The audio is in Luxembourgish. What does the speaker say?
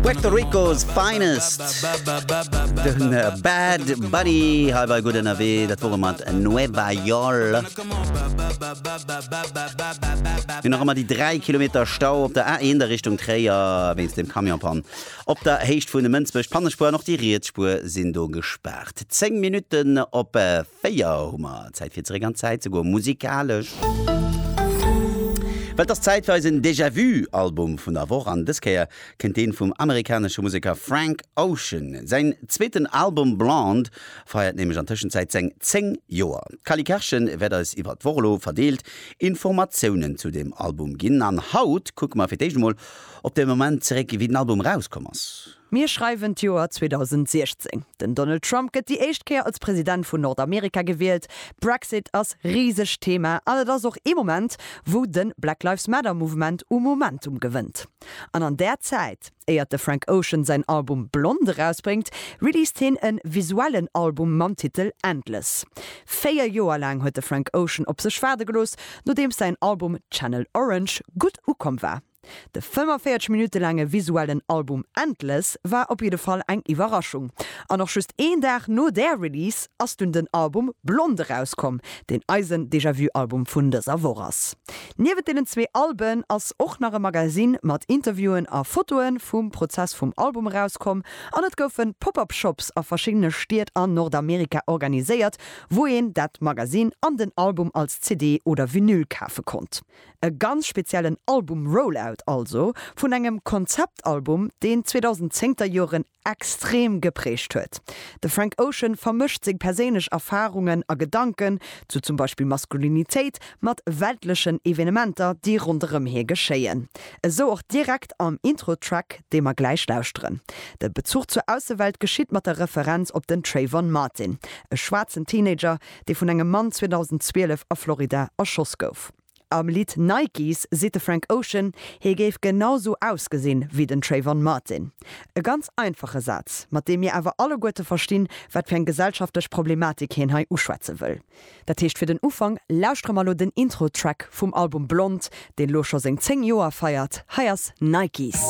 Puerto Ricos Finest Den äh, Bad Bunny hei war gutt ënnerwee, dat wore mat Nueva York. Mir nach ëmmer déi 3 Kilometer Stau op der A1 der Richtung Tréier wéinst dem Camionpann. Op der Héicht vun Mënsbech, d'Pannespuer an och déi riets Spuer sinn do gespaart. 10 Minutten op 4 hu mer Zäit fir zeréck an d'Zäit ze goen, musikalesch. Well et ass Zäit fir eisen Déjà-Vu-Album vun der Woch an dës Kéier kënnt dee vum amerikanesche Museker Frank Ocean. Säin zweeten Album Blonde feiert nämlech an Tëschenzäit seng 10 Joer. D'Cally Karchen wäert eis iwwer d'Woch elo verdeelt Informatiounen zu deem Album ginn an haut kucke mer fir d'éischt emol op de Moment zeréck, wéi den Album erauskomm ass. Mir schreiwen d'Joer 2016. Den Donald Trump gëtt déi éischt Kéier als President vun Nordamerika gewielt. Brexit ass riseg Thema an et ass och ee Moment, wou de Black Lives Matter Mouvement u Momentum gewënnt. An an där Zäit, éiert de Frank Ocean säin Album Blond erausbréngt, released hien e visuellen Album mam Titel Endless. Véier Joer laang huet de Frank Ocean op sech waarde gelooss, nodeems säin Album Channel Orange gutt ukomm war. De 45 Minutte laange visuellen Album Endless war op jidde Fall eng Iwwerraschung. An och just een Dag no där Release ass dunn den Album Blond erauskomm, deen eisen Déjà-Vu-Album vun dëser Woch ass. Niewent deenen zwee Alben ass och nach e Magazine mat Interviewen a Fotoe vum Prozess vum Album erauskomm an et goufe Pop-Up Shops a verschiddene Stied an Nordamerika organiséiert, wou een dat Magazine an den Album als CD oder Vinyl kafe konnt. E ganz speziellen Album-Rollout also vun engem Konzeptalbum, deen d'zweedausend-zéngter Joren extrem geprägt huet. De Frank Ocean vermëscht seng perséinlech Erfarungen a Gedanken zu zum Beispill Maskulinitéit mat weltlechen Evenementer, déi ronderëm hie geschéien. Esou och direkt am Intro-Track, dee mer gläich lauschteren. De Bezuch zur Aussewelt geschitt mat der Referenz op den Trayvon Martin, e schwaarzen Teenager, dee vun engem Mann 2012 a Florida erschoss gouf. Am Lidd Nikes seet de Frank Ocean, hie géif genau sou ausgesinn, wéi den Trayvon Martin. E ganz einfache Saz, mat deem mir awer alleguerte verstinn, wat fir eng gesellschaftlech Problematik hien hei uschwätze wëll. Dat heescht fir den Ufank, lauschtere mer elo den Intro-Track vum Album Blond, deen elo scho seng 10 Joer feiert. Hei ass Nikes.